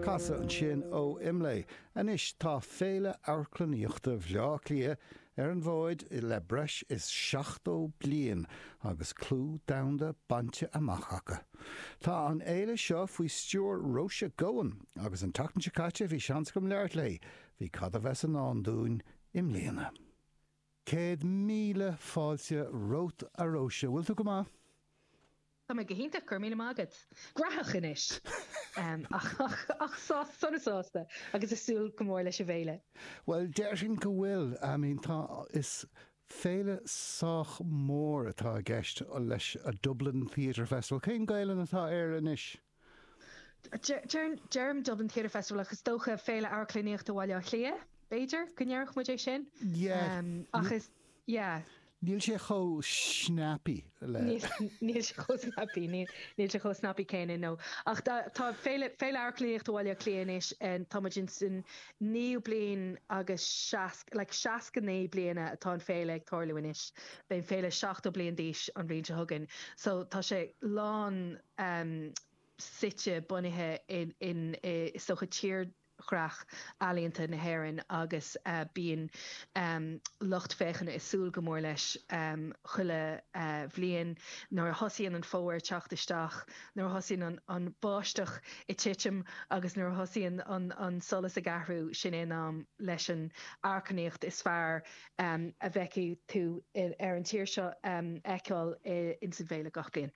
Casadh ansin ó IMLÉ. Anois tá Féile Amharclannaíochta Bhleá Cliath ar an bhfóid le breis is 70 bliain agus clú domhanda bainte amach acu. Tá an fhéile seo faoi stiúir Róise Goan agus an tseachtain seo caite bhí seans agam labhairt léi, faoi cad a bheas i ndán dúinn i mbliana. Céad míle fáilte romhat a Róise. Bhfuil tú go maith? Tá mé go hiontach, go raibh míle maith agat. Gafa anois! Ach sásta, sona sásta agus ag súil go mór leis an bhféile. Bhuel, déarfainn go bhfuil. I mean, tá, is féile sách mór atá i gceist leis, Dublin Theatre Festival. Cén Ghaelainn atá air anois? Deirim Dublin Theatre Festival ach is dócha Féile Amharclannaíochta Bhaile Átha Cliath, b'fhéidir, go ndéarfadh muid é sin? Ach is, yeah. Níl sé chomh snappy le. Níl sé chomh snappy, níl sé chomh snappy céanna, no. Ach tá Féile Amharclannaíochta Bhaile Átha Cliath anois, tá muid ins an naoú bliain agus seasc, like seasca naoi bliana atá an Féile ag tarlú anois. Beidh an Féile seachtó bliain d'aois an bhliain seo chugainn. So tá sé lán, amh suite, bunaithe in i i dtírdhreach ealaíonta na hÉireann agus bíonn lucht féachana ag súil go mór leis chuile bhliain. Nuair a thosaíonn an fómhar ag teacht isteach, nuair a thosaíonn an bháisteach ag titim agus nuair a thosaíonn an solas ag athrú, sin é an am leis an amharclannaíocht is fearr a bhfeicfidh tú sa tír seo a fheiceáil ins an bhféile gach bliain.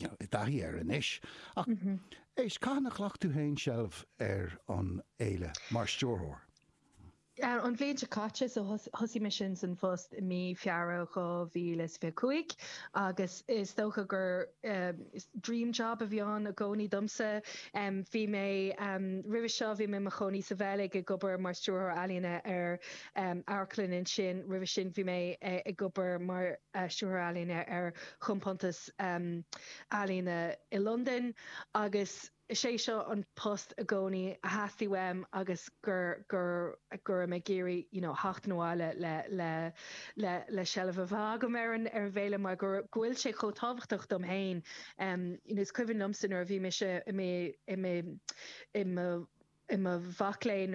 i dtaithí air anois, ach éist, cathain a ghlac tú féin seilbh ar an fhéile mar stiúrthóir? An bhliain seo caite, so thosaigh mé sin san phost i mí Feabhra 2025 agus is dócha gur dream job a bhí ann i gcónaí domsa. Bhí mé, roimhe seo bhí mé i mo chónaí sa Bheilg ag obair mar stiúrthóir ealaíne ar amharclann ansin, roimhe sin bhí mé ag obair mar stiúrthóir ealaíne ar chompántas, Ealaíne i Londain agus is é seo an post i gcónaí a theastaigh uaim agus go raibh mé ag iarraidh you know theacht abhaile le seilbh a bheith agam ar an bhféile mar go bhfuil sé chomh tábhachtach dom féin. Is cuimhin liomsa nuair a bhí mise i mo mhac léinn,